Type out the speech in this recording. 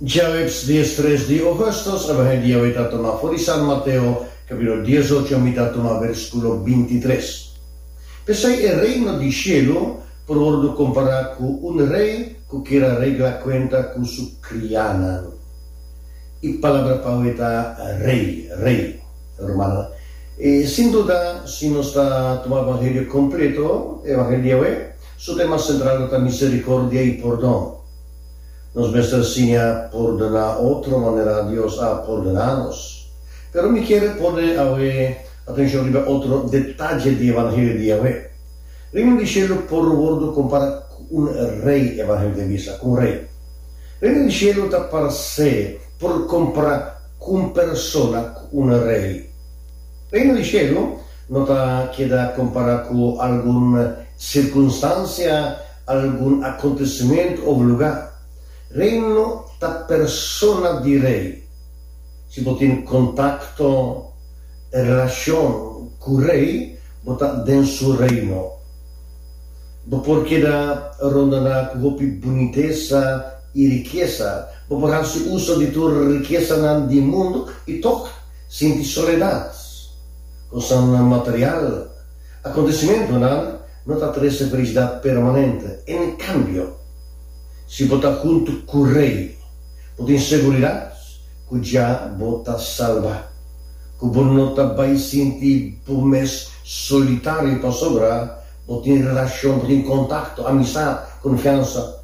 Djaweps dies tres di Ougustus a bahai di Yahweh ta tuma fori San Mateo, kapítulo dies ocho mi ta tuma verskulo binti tres. P'esei e Reino di Shelu por wordu kompará ku un rei ku kier a regla kuenta ku su krianan. E palabra pa awe ta rei, rei. Rumannan, sin duda si nos ta tuma evangelio kompleto, evangelio di Yahweh, Su tema sentral ta misericordia y pordon. Nos mester siña pordona otro manera Dios a pordona nos. Pero mi quiere por den awe atencion riba otro detalle di evangelio di Yahwe. Reino di cielo por wordo compara cu un rey, evangelio di bisa cu un rey. Reino di cielo ta parce por compara cu un persona cu un rey. Reino di cielo. No ta keda kompará ku algun sirkunstansia, algun akontesimentu òf lugá. Reino ta persona di Rei. Si bo tin kontakto i relashon ku Rei, bo ta den su Reino. Bo por keda rondoná ku hopi bunitesa i rikesa. Bo por hasi uso di tur rikesanan di mundu i tok sinti soledat. Kosnan material, Akontesimentunan no ta trese felisidad permanente, en kambio, si bo ta huntu ku Rei, bo tin seguridat ku dja bo ta salba, ku bo no ta bai sinti bo mes solitario pasobra bo tin relashon, bo tin kontakto, amisat, konfiansa.